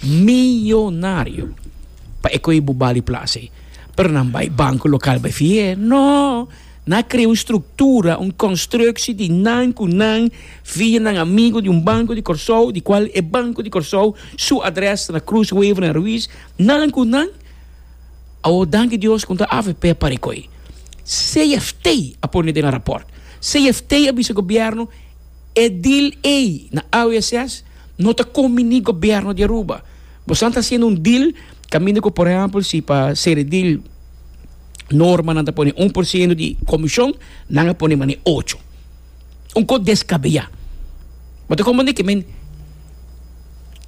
Millonario pa e koe bo bali plase. Pero nan bai banco local bai fié? No! Nan a crea un structura, un constructie di nan cu nan via nan amigo di un banco di Corsou, di cual e banco di Corsou su adres ta na Cruz Wever en Ruiz, nan cu nan Awor danki Dios cu ta avp a pari koe. CFT a pone den a rapport. CFT a bisa gobierno e deal ey na AWSS, No ta combini gobierno di Aruba. Bosan ta haciendo un deal caminda cu por ehempel si pa ceredil norma nan ta pone un por ciento di comision nan a pone mane ocho. Un cos descabea. Bo ta comprende que men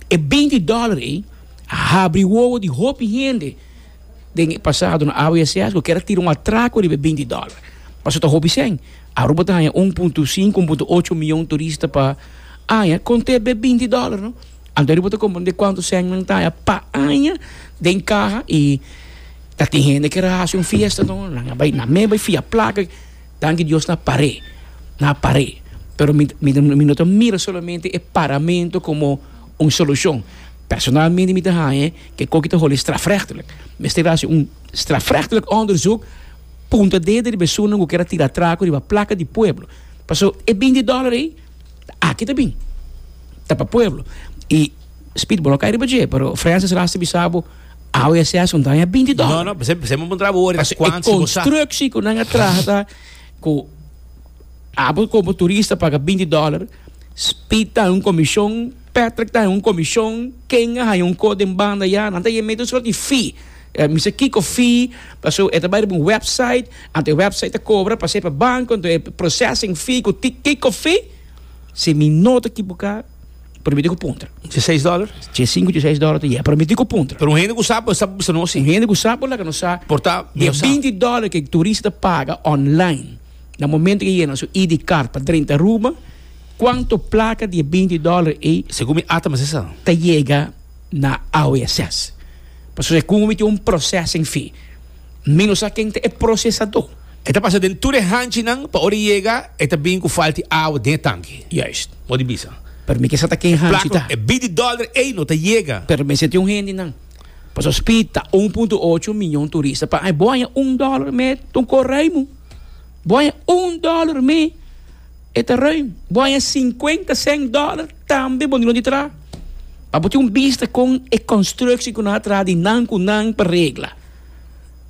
e binti dollar ey a habri wowo di hopi hende. Den e pasado nan awe e seasgo kier a tira un atraco riba e binti dollar. Paso ta hopi cen. Aruba ta haña un punto sinku, un punto ocho mion turista pa aña con te be binti dollar no. Anto aruba ta comprende cuanto cen nan ta haña pa aña den caha y ta tin hende kier a haci un fiesta no. Nan a bay, nan me a bay fia placa. Danki Dios nan a par'e, nan a par'e. Pero mi, mi no ta mira solamente e paramento como Un solucion personal mi di mi ta haña e ke koki ta holi strafrechtelijk. Mester a hasi un strafrechtelijk onderzoek punta dede riba esunnan ku kier a tira traku riba plaka di pueblo. Paso e binti dollar ei ta aki ta bin. Ta pa pueblo. I speedball a kai riba dje pero Francis Ras ta bisa bo awe a sesa un daña binti dollar. No, no, p'esei, p'esei mi a puntra bo ora kwan si bo sa. Paso e constructie ku nan a trahata ku abo como turista paga binti dollar. Speed ta haña un komishon, Patrick ta haña un komishon, Ken a haña un kos den banda ya. Nan ta yega mete un sòt di fee, Mister Kiko fee, pasobra e ta bai riba un wèpsait, anto e wèpsait ta kobra pa ser pa banko, anto e processing fee ku Kiko fee, si mi no ta kiboká, por mi ta ku puntra. Tjie seis dòler? Tjie sinku, tjie seis dòler ta yega, pero mi ta ku puntra. Pero un hende ku sa por sa por bisa no así. Un hende ku sa por laka no sa. Por ta medio sa. Di binti dòler ku e turista ta paga online. Na momento ke yena su ID card pa drenta Aruba, cuanto placa di e binti dollar ey Segun mi ata mester sa. ta yega na AOSS? Pasobra e cumo mi tin un processing fee, mi no sa ken ta e procesado. E ta pasa den tur e hanchinan pa ora e yega e ta bin cu falta di awa den e tanki. Juist. Bo di bisa. Pero mi ke sa ta ken hanchi ta. Placa, e binti dollar ey no ta yega. Pero mester tin un hendenan. Paso speed ta un punto ocho miñon turista pa ai. Bo haña un dollar me ton ko ruim. Bo haña un dollar me e ta ruim. Bo haña sinkuenta sènt dollar tambe bo no di tra. Pa bo tin un bista kon e constructie ku nan a traha di nan ku nan pa regla.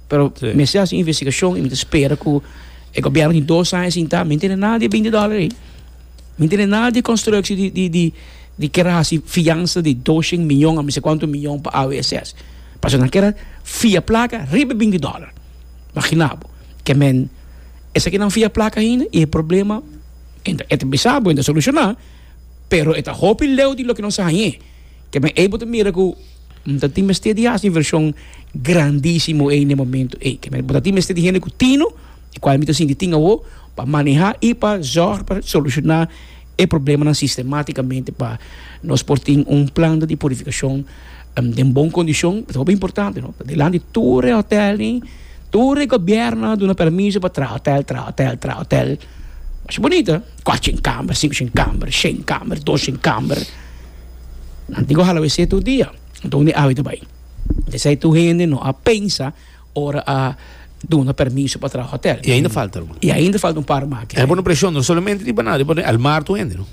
Pero mester hasi investigashon i mi ta spera ku e gobièrnu tin dos aña sintá mi no tene nada di e binti dollar ei. Mi tene nada di constructie di di di di kera hasi fiansa di doshen miyon a mi sa cuanto miyon pa AWSS pasobra nan kera fia placa riba e binti dollar magina bo ke men esaki nan fia placa ainda y e problema e ta e ta bisa bo e ta soluciona pero e ta hopi leu di loke nan sa hañe ke men ey bo ta mira ku bo ta tin mester di hasi inversion grandisimo ey na e momento ey ke men bo ta tin mester di hende ku tino e cual mi ta sinti tin awo pa maneha y pa zorg pa soluciona e problemanan sistematicamente pa nos por tin un planta di purificacion den bon condicion ta hopi importante no ta delante di tur e hotel ni tur e gobierno a duna permiso pa traha hotel traha hotel traha hotel masha bonita cuatshien camber cincushien camber shien camber doshien camber nan tin cu hala wc tur dia enton uni awe ta bay esey tur hende no a pensa Ora a duna permiso pa traha hotel. I ainda falta algun. I ainda falta un par maki. E por no presiona no solamente riba nan, riba el mar tur hende no.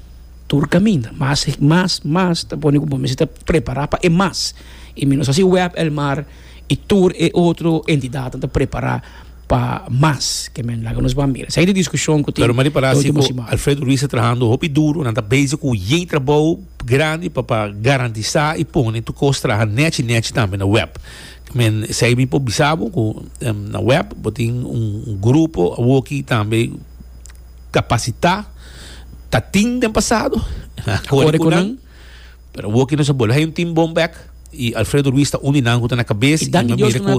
Tur caminda, mas, mas, mas ta pone cu bo mester ta prepara pa e mas. I mi nos haci web el mar i tur e otro entidadnan ta prepara pa mas ke men laga nos ban mira. Esei ta e discusion cu tin Pero mari para si cu Alfredo Ruiz ta trahando hopi duro, nan ta bezig cu yey trabou grandi pa pa garantisa i pone tur cos traha nechi nechi tambe na web. Men esei mi por bisa bo ku na web bo tin un grupo awoki tambe kapasitá ta tin den pasado kore ku nan pero awoki nos a bolbe haña un tim bon bèk i Alfredo Ruiz ta un di nan ku ta na kabes i mi mira ku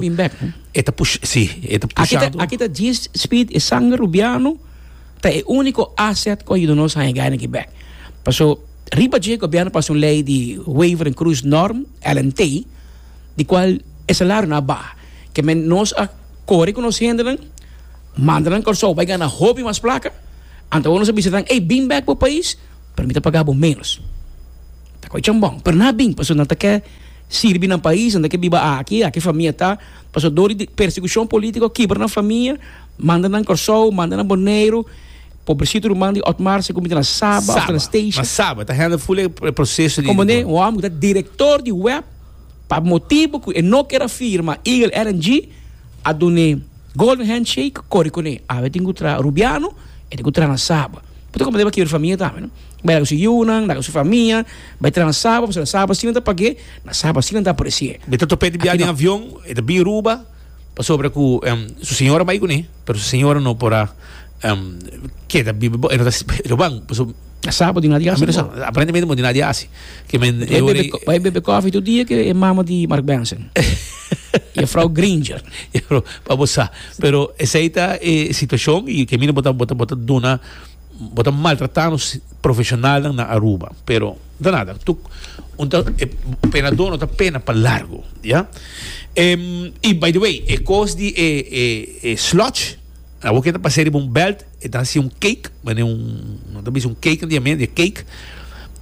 e ta pusha si e ta pushando aki ta G Speed e sanger Rubiano ta e úniko aset ku a yuda nos haña gai na ki bèk paso riba dje gobièrnu pasa un lei di Waiver en Cruz Norm LNT di cual e salario nan a baha. Ke men nos a core cu nos hendenan, manda nan Corsou bay gana hopi mas placa, anto awor nos a bisa nan, ey, bin bek bo pais, pero mi ta paga bo menos. Ta coge chambon, pero nan a bin pasobra nan ta ke sirbi nan pais, nan ta ke biba aki, aki famia ta, pasobra dor di persecucion politico kibra nan famia, manda nan Corsou, manda nan Boneiru, pobrecito ruman di Otmar sa cuminti na Saba of ta na Statia. Saba, ma Saba ta handle full e proceso di. Componde un homber cu ta director di web Pa motibu cu e no kier a firma Eagle RNG, a duna e golden handshake, cori con e. Awe tin cu traha Rubiano, e tin cu traha na Saba. Bo ta comprende pa kiber famia tambe, no? Bay laga su yiunan, laga su famia, bay traha na Saba, pasobra na Saba si nan ta pag'e, na Saba si nan ta apreci'e. Bo ta topa e di biaha den avion, e ta bin Aruba. Pasobra cu su señora bay cun'e, pero su señora no por a keda biba bo, e no ta roban, pasobra. A sa bo di nada di hasi bo. Aparentemente bo no tin nada di hasi. Bay bebe coffee tur dia cu e mama di Mark Benson y e frouw Gringer. Pa bo sa. Pero esey ta e situacion y kemina bo ta duna. Bo ta maltrata nos profesionalnan na Aruba, pero ta nada tu unta e penador no ta pena pa largo ya. Y by the way e cos di e e sludge awor ke ta pas'e riba un belt e ta haci un cake mane un no ta bisa un cake na diamento e cake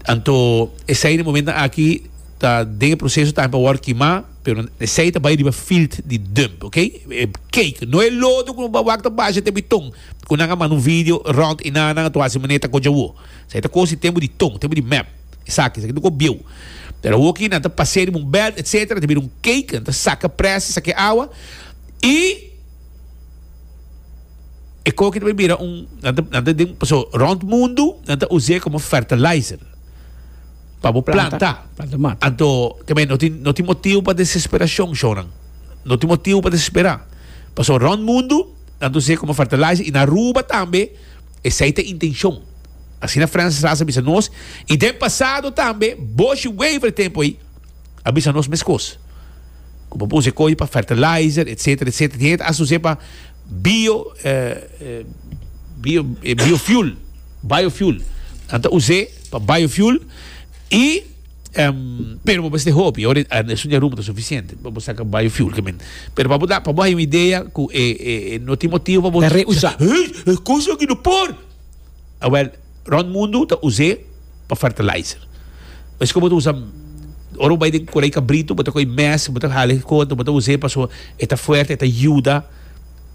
anto esey den momento aki ta den e proceso tambe pa wor kima pero esey ta bay riba field di dump ok e cake no e lodo ku no wak ta basha te biton Cu nan a manda un video rond y nana nan a tuasi manera ta coge awo. Esaki ta cosi tempo di tong, tempo di mep. Esaki, esaki ta cu bieu. Pero awo aki nan ta pasea riba un belt etc. Ta bira un cake, nan ta saca pres y saca e awa y e coki ta bira un, nan ta, nan ta den, paso rond mundo nan ta uze como fertilizer pa bo planta. Planta mata. Anto tambe no tin, no tin motivo pa desesperacion, shownan. No tin motivo pa desespera. Paso rond mundo. Tantu esei como fertilizer y na Aruba tambe esei ta intencion, asina Francis Ras a bisa nos y den pasado tambe Boshi Wever tempo ey a bisa nos mescos. Cu bo punse coge pa fertilizer etc. Etc. Tin hende ta hasi sosé pa bio biofuel, biofuel, nan ta us'é pa biofuel y. pero bo mester hopi ora esun dje rumbo ta sufisiente bo saca bayo fuel kimin pero pa bo da pa bo hay un idea cu e e no tin motibo pa bo ta rehusa hey e cos aki no por awel rond mundo ta use pa fertilizer es como bo ta usa ora bo bay den corey cabrito bo ta coy mes bo ta hala e cota bo ta use pasobra e ta fuerte e ta yuda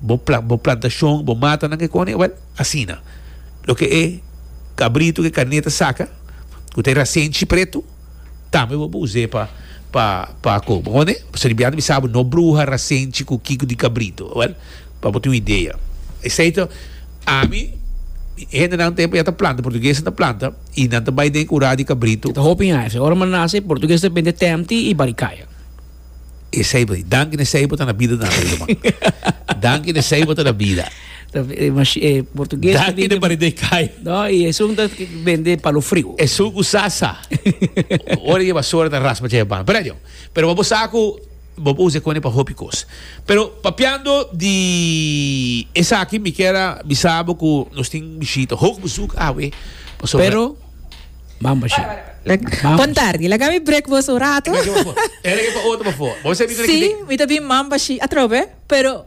bo pla bo plantashon bo mata nan ke koni wèl asina loke e kabritu ke karné ta saka ku ta e rasenchi pretu tambe bo por us'é pa pa pa koba koni pasobra di biaha ta bisa bo no bruha rasenchi ku kiko di kabritu wèl pa bo tin un idea esei ta ami hendenan tempu ya ta planta portuguesnan ta planta i nan ta bai den kurá di kabritu. Ta hopi haya esei ora manase portugues ta bende tèmti i barikaya. Esei bo di. Danki na esei bo ta na bida tambe, ruman. Danki na esei bo ta na bida. Ta, eh, machi- eh, portugués ta Danki di- na paridei kai. No, i esun ta bende palo friu. Esun ku sasa. Ora e basura ta raspa tjei e ban. Pero adion. Pero bo sa ku bo por usa e kone pa hopi kos. Pero papiando di esaki mi kier a bisa bo ku nos tin bishita. Hopi bezoek awe pasobra. Pero. Bamba ship. Bon tardi. Laga mi break bos un rato. Ela ke pa otro bafo. Bo sebi kende ki tin. Si, mi ta bin Mamba Ship atrou be, pero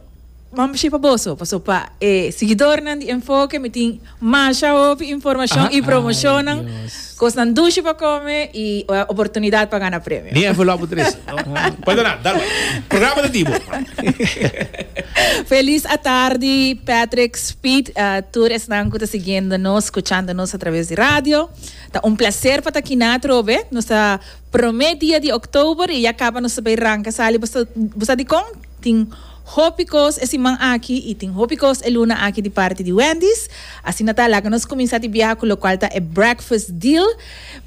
Mamba Ship pa boso, paso pa e siguidornan di Enfoke mi tin masha hopi informashon i promoshonnan, kosnan dushi pa kome i oportunidat pa gana premio. Ni envelop bo trese. Pueda nan, dal wak. Programa ta di bo. Felis atardi Patrick. Speed a tur esnan cu ta siguiendo nos, scuchando nos a traves di radio. Ta un placer pa ta aki na atrobe. Nos ta prome dia di Oktober y ya caba nos ta bay ranca sali. Bo sa, bo sa dicon? Tin hopi cos e siman aki y tin hopi cos e luna aki di parti di Wendy's. Asina ta, laga nos cuminsa di biaha cu locual ta e Breakfast Deal.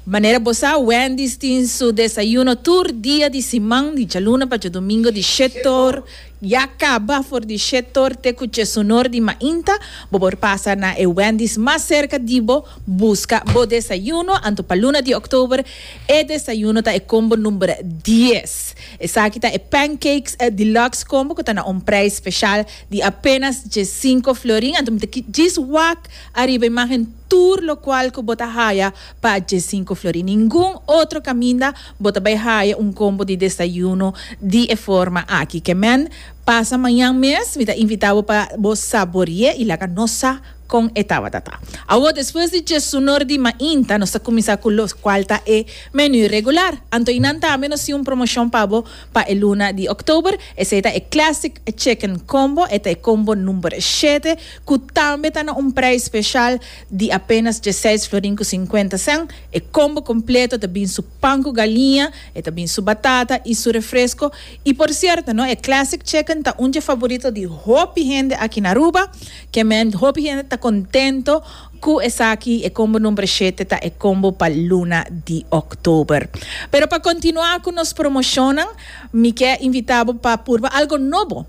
Manera bo sa, Wendy's tin su desayuno tur dia di siman, di djaluna pa djadomingo di shetor. Ya caba for di Che Torte cu Che Sunor di Mainta, bo por pasa na e Wendy's mas cerca di bo busca bo desayuno, anto pa luna di Oktober e desayuno ta e combo number dies. Esaki ta e Pancakes Deluxe Combo cu ta na un prijs special di apenas djesinco florin, anto mi ta ki djis wak ariba imagen tur locual cu bo ta haya pa djesinco florin. Ningun otro caminda Bo ta bay haya un combo di desayuno di e forma aki. Ke men? Pasa mañan mes mi ta invita bo pa bo saborie y laga nos sa con e tabata ta. Awo despues di djesunor di mainta nos ta cuminsa cu lo cual ta e menu regular. Anto y nan tambe nos tin un promocion pa bo pa e luna di oktober. Esey ta e classic chicken combo. E ta e combo number shete cu tambe ta na un prijs special di apenas dieseis florin cu cincuenta cent. E combo completo ta bin su pan cu galiña, e ta bin su batata y su refresco. Y por cierto no, e classic chicken ta un dje favorito di hopi hende aki na Aruba. Kiermèn, hopi hende ta contento cu esaki, e combo number shete ta e combo pa luna di Oktober. Pero pa continua cu nos promocionnan, mi kier invita bo pa purba algo nobo.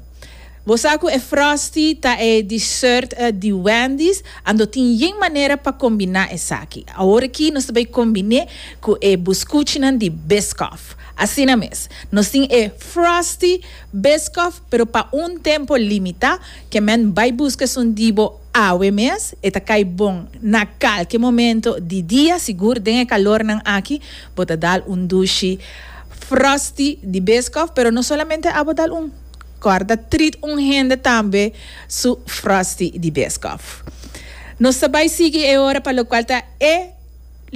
Bo sa cu e Frosty ta e dessert di Wendy's? A no tin yen manera pa combina esaki. Awor aki nos ta bay combine cu e buscuchinan di Biscoff. Asina mes, nos tin e Frosty Biscoff, pero pa un tempo limita. Kemen bay busca esun di bo awe mes. E ta cay bon na calke momento di dia. Sigur den e calornan aki bo ta dal un dushi Frosty di Biscoff, pero no solamente a bo dal un. Kòrda ta trit un hende tambe su Frosty di Biscoff. Nos ta bai sigui e ora pa lokual ta e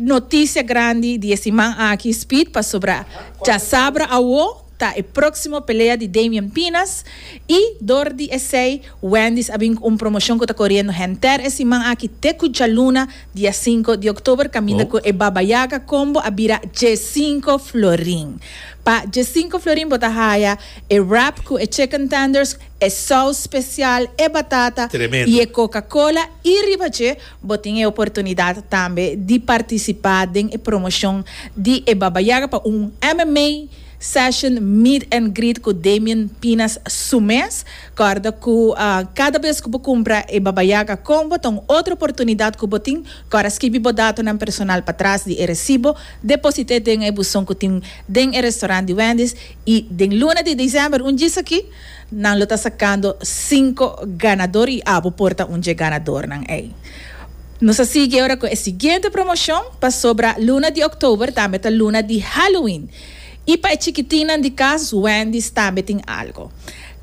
notisia grandi di e siman aki, Speed, pasobra djasabra awo ta e próksimo pelea di Damien Pinas i dor di esei Wendy's a bin ku un promoshon ku ta koriendo henter e siman aki te ku djaluna Dia e sinku di oktober kaminda ku e Baba Yaga Combo a bira dje sinku florin. Pa dje sinku florin bo ta haya e wrap ku e chicken tenders, e sous special, e batata i e coca cola i riba dje bo tin e oportunidad tambe di participa den e promoshon di e Baba Yaga pa un MMA session meet and greet ku Damien Pinas su mes Kòrda ku kada bes ku bo kumpra e Baba Yaga Combo ta un otro oportunidat ku bo tin. Kòr a skibi bo datonan personal patras di e resibo, deposit'é den e buson ku tin den e restorant di Wendy's i den luna di desèmber, un djisaki, nan lo ta sakando sinku ganador i abo por ta un dje ganadornan ei. Nos a sigui ora ku e siguiente promoshon pasobra luna di òktober tambe ta luna di Halloween i pa e chikitinnan di kas Wendy's tambe tin algu.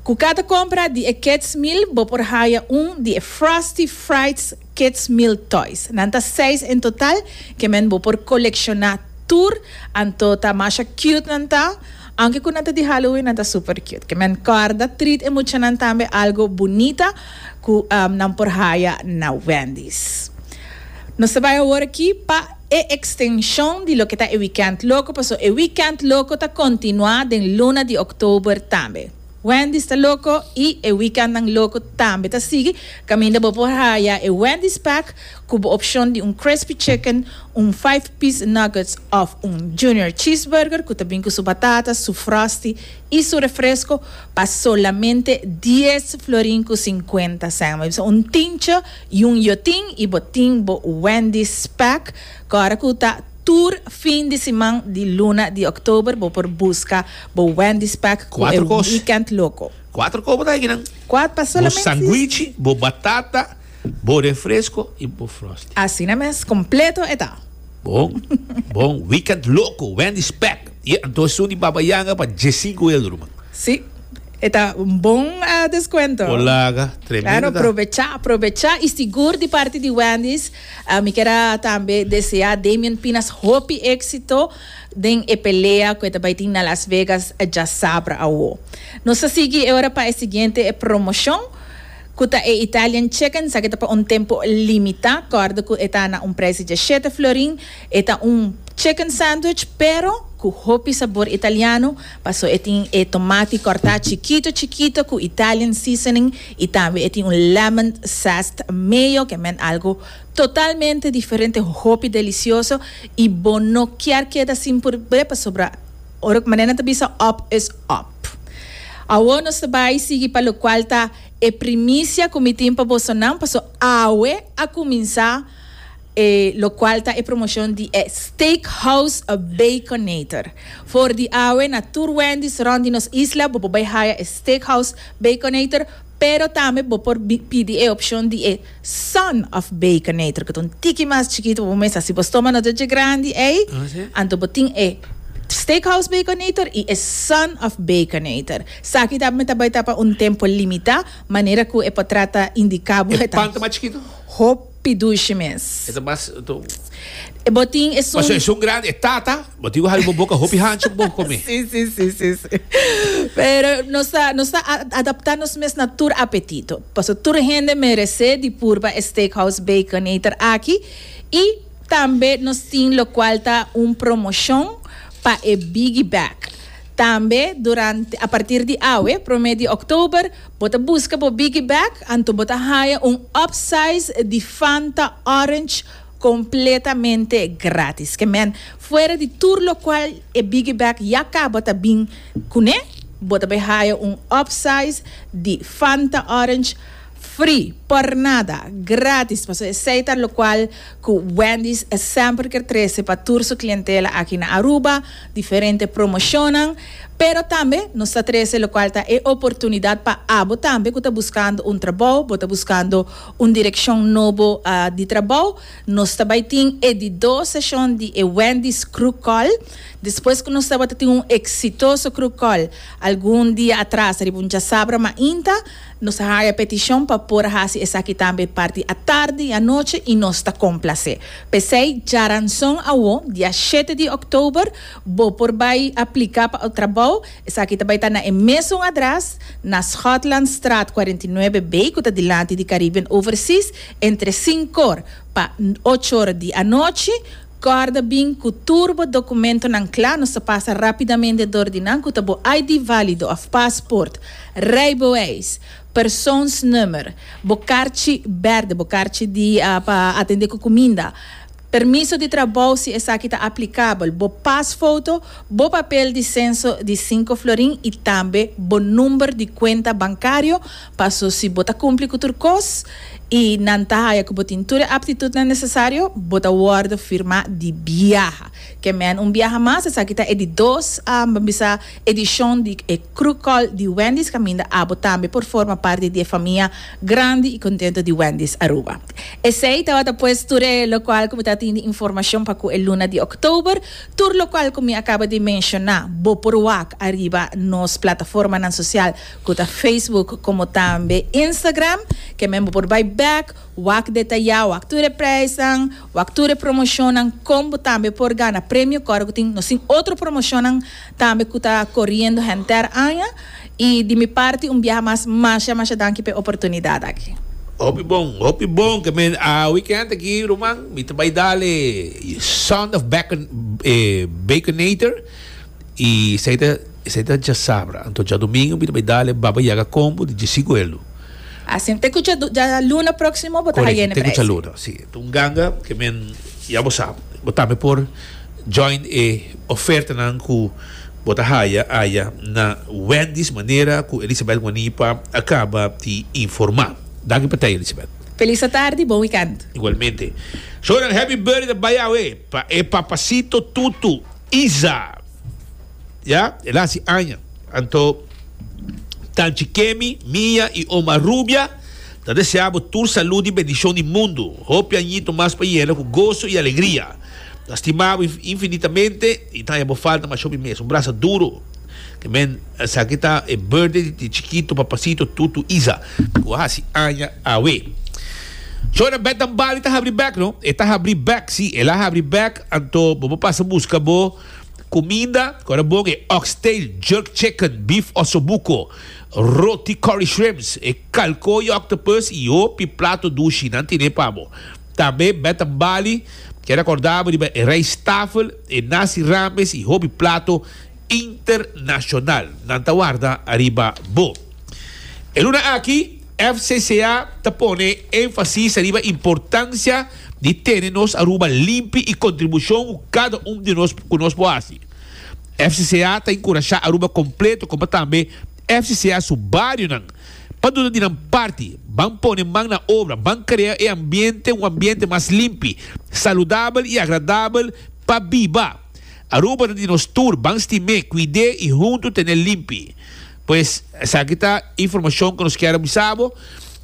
Cu cada compra di e Kids Meal bo por haya un di e Frosty Frights Kids Meal Toys. Nan ta seis en total, ke men bo por colecciona tur, anto ta masha cute nan ta. Aunke cu nan ta di Halloween, nan ta super cute. Ke men corda treat e muchanan tambe algo bunita cu nan por haya na Wendy's. Nos ta bay awor aki pa. E extension di loke ta e weekend loco paso e weekend loco ta continua den luna di october tambe. Wendy's ta loco y e weekendnan loco tambe ta sigui caminda bo por haya e Wendy's pack cu bo opcion di un crispy chicken, un five piece nuggets of un junior cheeseburger cu ta bin cu su batatas, su frosty y su refresco pa solamente dies florin cu cincuenta cen. Mei bisa un tincho. Jun yo tin y bo tin bo Wendy Speck cu ora cu ta tur fin di siman di luna di October bo por busca bo Wendy Speck cu e Weekend Loco. Cuatro cos bo ta higi nan. Cuat pa solamente bo sanguichi, bo batata, bo refresco y bo frosty. Asina mes, completo e ta. Bon, bon, Weekend Loco, Wendy Speck. Ye, anto esun di Baba Yanga pa diesinco euro man. Si. E ta un bon descuento. Bo laga tremendo ta. Claro, probecha, probecha y sigur di parti di Wendy's mi kier a tambe desea Damien Pinas hopi exito den e pelea cu e ta bay tin na Las Vegas diasabra awo. Nos ta sigui e ora pa e siguiente promocion cu ta e Italian Chicken, esaki ta pa un tempo limita, corda cu e ta na un prijs di diashete florin, e ta un chicken sandwich pero cu hopi sabor italiano. Paso e tin e tomati corta chikito chikito cu Italian seasoning y tambe e tin un lemon zest mayo que men algo totalmente diferente hopi delicioso y bo no kier keda sin probe pasobra ora cu manera nan ta bisa op is op. Awo nos ta bay sigui pa locual ta e primicia cu mi tin pa bosonan paso awe a cuminsa e locual ta e promocion di e Steakhouse Baconator. For di awe na tur Wendy's rond di nos isla bo por bay haya e Steakhouse Baconator, pero tambe bo por pidi e opcion di e Son of Baconator, cu ta un tiki mas chikito pa bo mesa. Si bo stomago no ta dje grandi ey, anto bo tin e Steakhouse Baconator y e Son of Baconator. Saki tambe ta bay ta pa un tempo limita, manera cu e por trata indica bo. E pan ta mas chikito? Hopi dushi mes. E ta mas to. E bo tin esun. Paso esun grandi e tata, bo tin ku habi bo boka hopi hanchi ku bo komi. Si, si, si, si, si. Pero nos ta, nos ta adapta nos mes na tur apetito. Paso tur hende merese di purba e Steakhouse Baconator aki i tambe nos tin lokual ta un promoshon pa e bigi bek. Tambe durante a partir di awe, prome di October, bo ta busca bo biggie bag, anto bo ta haya un upsize di Fanta Orange completamente gratis. Ke men, fuera di tur locual e biggie bag ya caba ta bin cune, bo ta bay haya un upsize di Fanta Orange free, por nada, gratis, pasobra esey ta locual cu Wendy's semper ker trece pa tur su clientela aki na Aruba. diferente promocionnan, pero tambe nos ta trece locual ta e oportunidad pa abo tambe cu ta buscando un trabou, bo ta buscando un direccion nobo di trabou, nos ta bay tin e di dos secion di e Wendy's Crew Call, despues cu nos tabata tin un exitoso Crew Call algun dia atras riba un djasabra mainta, Nos a haña petishon pa por hasi esaki tambe parti atardi i anochi i nos ta komplasé. P'esei djaranson awó, dia shete di òktober, bo por bai apliká pa ou trabou. Esaki ta bai ta na e mesun adrès, na Schotlandstraat cuarenta y nueve B, ku ta dilanti di Caribbean Overseas, entre sinkor pa ocho ora di anochi. Kòrda bin ku tur bo dokumentonan kla, nos ta pasa rápidamente dor di nan ku ta bo ID válido òf pasport, rijbewijs, persoonsnummer, bo karchi bèrdè, bo karchi di pa atendé ku kuminda, permiso di trabou si esaki ta aplikabel, bo pasfoto, bo papel di senso di sinku florin i tambe bo number di kuenta bankario Paso si bo ta cumpli cu tur cos y nan ta haya cu bo tin tur e aptitudnan necesario, bo ta wordo firma di biaha. Ke men un biaha mas, esaki ta e di dos, um, bisa, edicion di e Crewcall di Wendy's, caminda abo tambe por forma parti di e famia grandi y contento di Wendy's Aruba. Esey tabata pues tur e locual cu mi ta tin di informacion pa cu e luna di October, tur locual cu mi a caba di menciona, bo por wak ariba nos plataformanan social cu ta Facebook como tambe Instagram, kem'en bo por bay bek, wak detayá, wak tur e prijsnan, wak tur e promocionnan, con bo tambe por gana premio core cu tin nos tin otro promocionnan tambe cu ta coriendo henter aña y di mi parti un biaha mas masha masha danki p'e oportunidad aki. Hopi bon, hopi bon ke men a weekend aki ruman. Mi ta bay dal e Sound of Bacon, e Baconator. Y esey ta esey ta djasabra. Anto djadomingo mi ta bay dale Baba Yaga combo di djisi gueldo. Asina te cu dja djaluna proximo bo ta Correcto, hayene te cu prijs. djaluna, si. Ta un ganga ke men ya bo sab. Bo tambe por join e ofertanan cu bo ta haya aya na Wendy's manera cu Elisabeth Guanipa a caba di informa. Danki pa tey Elisabeth. Felis atardi, bon weekend. Igualmente. Zoran happy birthday ta bay awe. Pa e papacito tutu Isa ya el haci aña anto Tanchi Kemi, Mia y Oma Rubia ta desea bo tur salud y bendicion di mundo, hopi añito mas pa yena cu gozo y alegria. Ta stima bo infinitamente y ta haña bo falta mas hopi mes. Un brasa duro. Amen esaki ta e birthday di chikito papacito tutu Isa cu a haci aña awe. Zo na bek dan Bali ta habri bek no e ta habri bek si el a habri bek anto bo bo pasa busca bo cuminda cu ta bon e oxtail jerk chicken beef osobuco roti curry shrimps e calco y octopus y hopi plato dushi nan tine pa bo tambe bek dan Bali kier acorda bo riba e rijsttafel e nasi rames y hopi plato Internacional nan ta warda ariba bo. E luna aki FCCA ta pone enfasis ariba importancia di tene nos Aruba limpi y contribucion cu cada un di nos cu nos por haci. FCCA ta encurasha Aruba completo como tambe FCCA su barionan pa duda di nan parti ban pone man na obra ban crea e ambiente un ambiente mas limpi, saludabel y agradabel pa biba. Aruba ta di nos tur, ban sti me, cuide y hunto tene limpi. Pues esaki ta informacion cu nos kier a bisa bo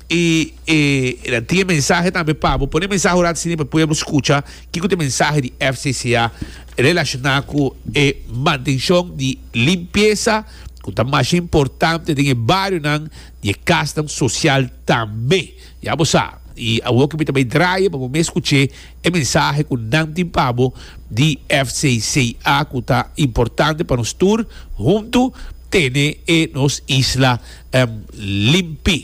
y e ta tin e mensahe tambe pa bo. Pone e mensahe orad sini pa pueblo scucha kico ta e mensahe di FCCA relaciona cu e mantencion di limpieza cu ta masha importante den e barionan y e casnan social tambe. Ya bo sa, i awor ke mi ta bai draai pa bo mes skuch'é e mensahe ku nan tin pa bo di FCCA ku ta importante pa nos tur huntu tene e nos isla limpi.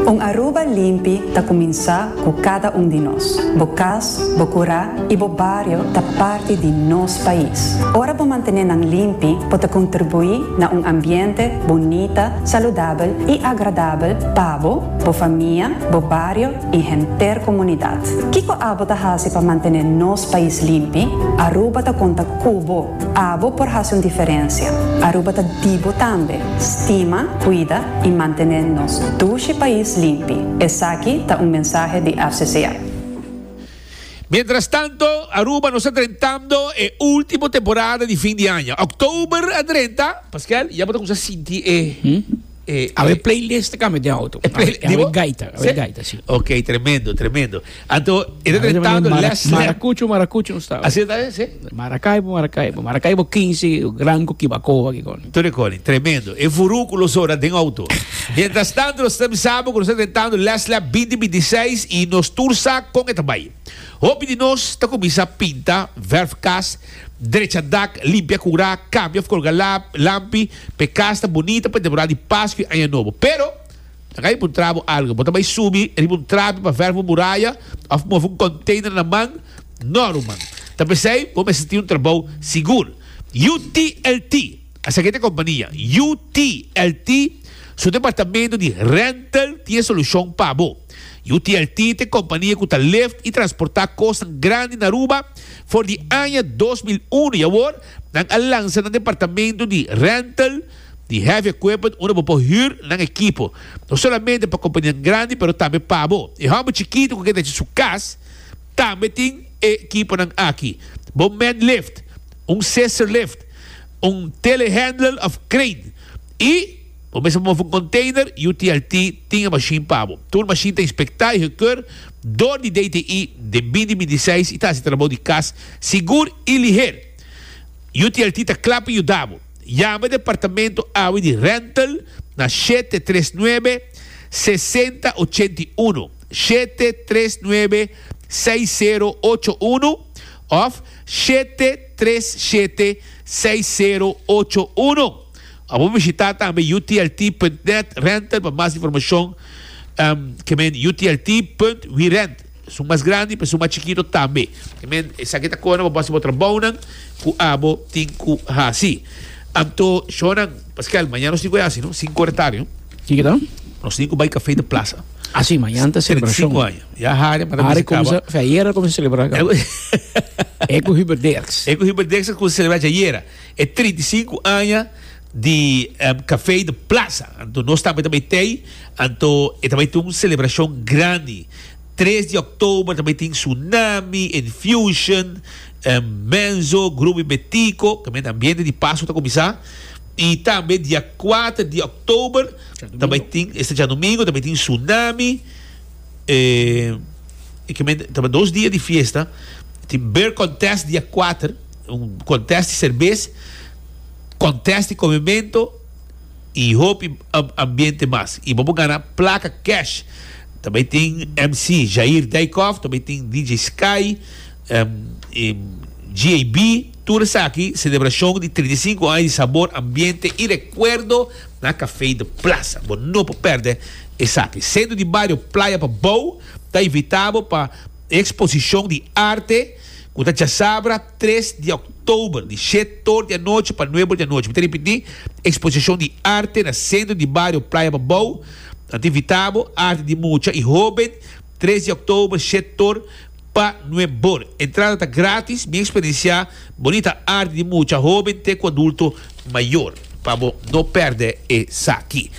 Un Aruba limpi ta kuminsá ku kada un di nos. Bo kas, bo kurá i bo bario ta parti di nos pais. Ora bo mantené nan limpi, bo ta kontribuí na un ambiente bunita, saludabel i agradabel pa bo, bo famia, bo bario i henter komunidat. Kiko abo ta hasi pa mantené nos pais limpi? Aruba ta konta ku bo. Abo por hasi un diferensia. Aruba ta di bo tambe. Stima, kuida i mantené nos dushi pais limpi. Esaki ta un mensahe di FCCA. Mientrastanto, Aruba nos ta drentando e ultimo temporada di fin di aña. Oktober a drenta. Paskel, ya bo ta kumsa sinti e, e, e. Awe playlist ta kambia den auto. E play, di bo? Awe gaita, awe gaita, si. Ok, tremendo, tremendo. Anto, e ta drentando Last Lap. Marakuchu, marakuchu nos ta awe. Asina ta, si. Maracaibo Maracaibo Maracaibo kinsi gran ku Kibacoa ki koni. Tur e koni. Tremendo. E vurú ku lo sora den outo. Mientras tanto nos ta bisa bo ku nos ta tentando lès lab binti binti i seis i nos tur sa kon e ta bai. Hopi di nos ta kuminsa pinta, vèrf kas, drecha dak, limpia kurá, kambia òf kolga lab, lampi, p'e kas ta bunita pa e temporada di Paskua i Aña Nobo. Pero, laga mi puntra bo algu. Bo ta bai subi riba un trapi pa vèrf un muraya òf move un konteiner na man? No, ruman. Ta p'esei bo mester tin un trabou sigur. UTLT, asina ke ta e kompania. UTLT su departamento di rental tin e solushon pa bo. UTLT ta e kompania ku ta lift i transportá kosnan grandi na Aruba for di aña dos mil uno i awor nan a lansa nan departamento di rental di heavy equipment unda bo por hür nan ekipo no solamente pa kompanianan grandi pero tambe pa bo e hòmber chikitu ku ke ta hasi su kas Tambe tin e ekiponan aki, Bon Man Lift, un Scissor Lift, un Telehandler of Crane i bo mester move un container, UTLT tin e mashin pa bo. Tur mashin ta inspecta i gekeur dor di DTI den bindi bindi seis i ta haci trabou di cas sigur i liher. UTLT ta cla pa yuda bo. Yama departamento awe di Rental na shete tres nuebe sesenta ochenta i uno. shete tres nuebe seis sero ocho uno of shete tres shete seis sero ocho uno. A bo bishita tambe UTLT punt net renter pa mas informashon em ke men UTLT punt we rent esun mas grandi pa esun mas chikito tambe ke men esaki ta kona bo base bo trabounan ku abo tin ku hasi. Anto shornan paskial mañana nos tin ku e hasi no sinku ora tardi no. Kiko ta? Nos tin ku bai kafé di plasa. Asi, mañana ta selebrashon. Treinta i sinku aña. Ya Hare para mester kaba. Hare kumsa, fei ayera kumsa selebrá ka. E ku Hubert Dirks. E ku Hubert Dirks ta kumsa selebrá djayera. E treinta i sinku aña di kafé di plasa. Anto nos tambe ta bai t'ei. Anto e ta bai tin un selebrashon grandi. Tres di òktober ta bai tin Tsunami, Infusion, Menzo, Grupo Bebé Tico, kaminda ambiente di Pasku ta kuminsá. Y tambe dia cuater di october ta bay tin, esta djadomingo ta bay tin Tsunami, e ekimen ta bay dos dia di fiesta, tin beer contest dia cuater, un contest di cerbes, contest di comemento y hopi ambiente mas. Y bo por gana placa cash, ta bay tin MC Jair Dijkhoff, ta bay tin DJ Sky, GAB, Tur esaki, selebrashon di trinta i sinku aña di sabor, ambiente i rekuerdo na Kafei de Plasa. Bo no por pèrdè esaki. Sentro di Bario Playa pa Bou ta invitá bo pa e eksposishon di arte ku ta djasabra tres di òktober, di shèt òr di anochi pa nuebe òr di anochi. Mi ta ripití, eksposishon di arte na Sentro di Bario Playa pa Bou ta invitá bo, arte di mucha i hóben. Tres di Oktober Shet Tor pa Nue Bor. Entrada ta gratis, mi experienciá bonita arti di mucha hoben te cu adulto mayor. Pa bo no perde esaki.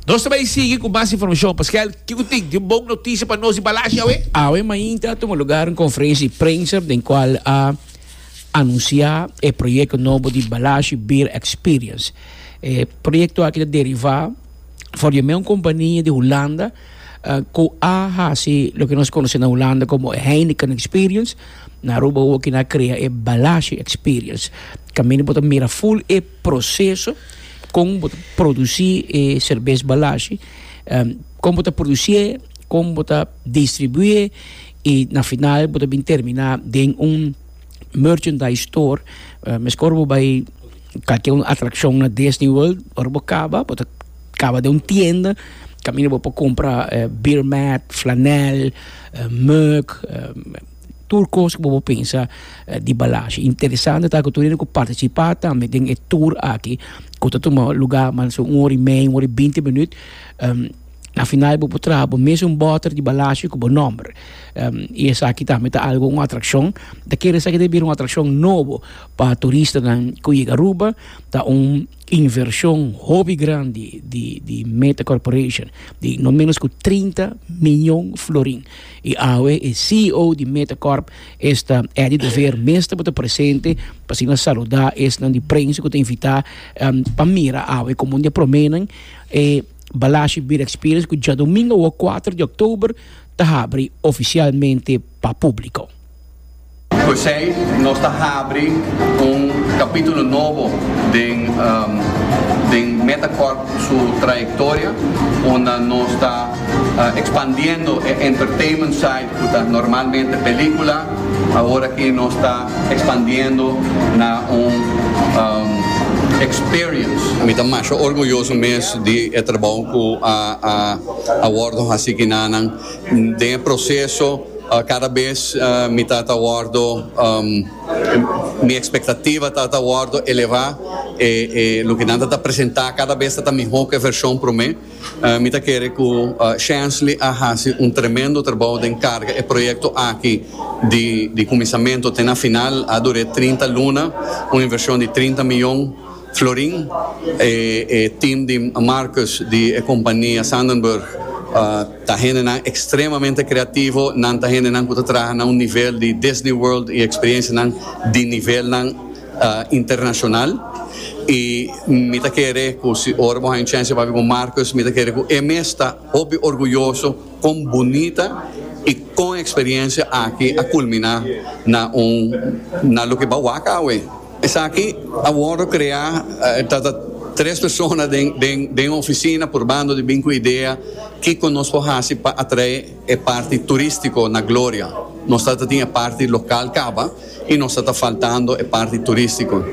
Nos ta bai sigui cu mas informacion. Pascual, kico tin? Tin un bon noticia pa nos di Balashi awe? Awe mainta a tuma lugar un conferencia di prensa den cual a anuncia e proyecto nobo di Balashi Beer Experience. E proyecto aki ta deriva for di un compania di Hulanda. ku a hasi loke nos konosé na Hulanda komo e Heineken Experience, na Aruba hopi na krea e Balashi Experience. Kaminda bo ta mira ful e proseso kon bo ta produsí e serbes Balashi, kon bo ta produsíe, kon bo ta distribuíe i na final bo ta bin terminá den un merchandise store, meskor bo bai. Kalke un atrakshon na Disney World, ora bo kaba, bo ta kaba den un tienda, kaminda bo por kumpra beer mat, flanèl, mug, tur kos ku bo por pensa di balashi. Interesante ta ku tur hende ku partisipá tambe den e tur aki ku ta tuma lugá mas o un ora i mei, un ora i binti minüt, na final bo por traha bo mes un bòter di balashi ku bo nòmber i esaki tambe ta algu, un atrakshon. Ta kere esaki ta bira un atrakshon nobo. pa turistanan ku yega Aruba ta un invershon hopi grandi di di Meta Corporation di no menos ku trinta miyon florin. I awe e CEO di Meta Corp esta Eddie de Veer mes tabata presente pa asina saluda esnan di prensa ku ta invitá pa mira awe komo un di e proménan e Balashi Beer Experience ku djadumingu awor kuater di òktober ta habri ofisialmente pa públiko. P'esei nos ta habri un kapitulo nobo den den Metacorp su trayektoria unda nos ta ekspandiendo e entertainment side ku ta normalmente pelikula, awor aki nos ta ekspandiendo na un experience. Mi ta masha orguyoso mes di e trabou ku a wordo hasi kinanan. Den e proceso cada bes mi ta ta wordo mi expectativa ta ta wordo eleva e e loke nan ta ta presenta cada bes ta ta miho ke version prome mi ta kere cu Shensley a haci un tremendo trabou den carga e proyecto aki di di cuminsamento te na final a dure trinta luna un inversion di trinta miyon. Florin, e e team di Marcus di e compania Sandenburg ta hendenan extremamente creativo, nan ta hendenan cu ta traha na un nivel di Disney World y experiencianan di nivelnan internacional y mi ta kere cu si ora bo haña un chance di papia cu Marcus mi ta kere cu e mes ta hopi orguyoso con bunita y con experiencia aki a culmina na un na loke bawak awe. Esaki a wòrdu kreá ta ta tres persona den den den ofisina purbando di bin ku idea kiko nos por hasi pa atrae e parti turístiko na Gloria. Nos ta ta tin e parti lokal kaba i nos ta ta faltando e parti turístiko.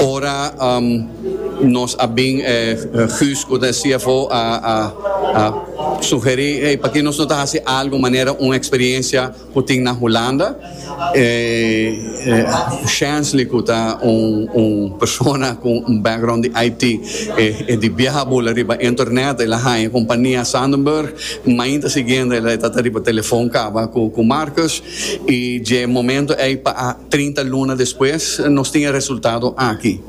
Ora nos a bin Guus ku ta e CFO a a a sugerí, hey, p'akí nos no ta hasi algu manera un eksperiencia, Cu tin na Hulanda, e Shansley cu ta un un persona cu un background di IT, e e di biaha bula riba internet, el a haña compania Sandenburg, mainta siguiente el a ta ta riba telefoon caba cu cu Marcus, y dje momento ey pa a trinta luna despues nos tin e resultado aki.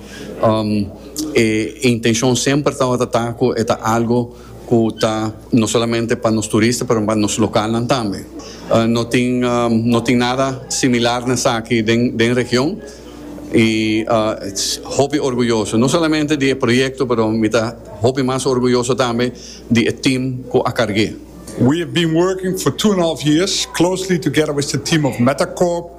Um, e intencion semper tawata ta cu e ta algo. cu ta no solamente pa nos turista pero pa nos localnan tambe. No tin no tin nada similar na esaki den den region y hopi orguyoso no solamente di e proyecto pero mi ta hopi mas orguyoso tambe di e team cu a carge. We have been working for two and a half years closely together with the team of Metacorp,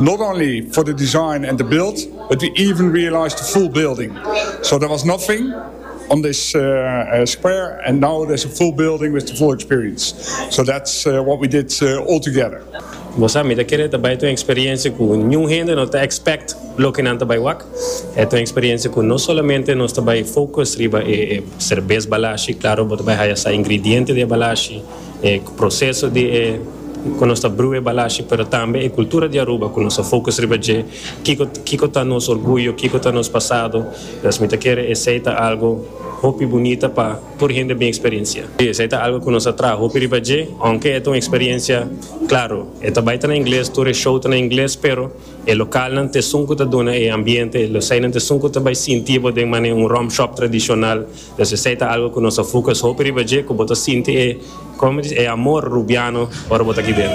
Not only for the design and the build but we even realised the full building so there was nothing on this square and now there's a full building with the full experience so that's what we did all together. Bo sa mi ta kere ta bai ta un experiencia cu niun hende no ta expect loke nan ta bai wak. E ta un experiencia cu no solamente nos ta bai focus riba e cervez balashi, claro bo ta bai haya sa ingrediente di e balashi, e proceso di e cu nos ta brue balashi pero tambe e cultura di Aruba cu nos a focus riba dje, kico kico ta nos orguyo, kico ta nos pasado, entonces mi ta kere esey ta algo hopi bunita pa tur hende bin experiencia. Si, esey ta algo cu nos a traha hopi riba dje, aunke e ta un experiencia, claro, e ta bay ta na ingles, tur e show ta na ingles, pero e localnan t'esun cu ta duna e ambiente, e eseynan t'esun cu ta bay sinti bo den mane un rum shop tradicional, Nos esei ta algo cu nos ta fucus hopi riba dje cu bo ta sinti e, como me dice, e amor rubiano ora bo ta aki den.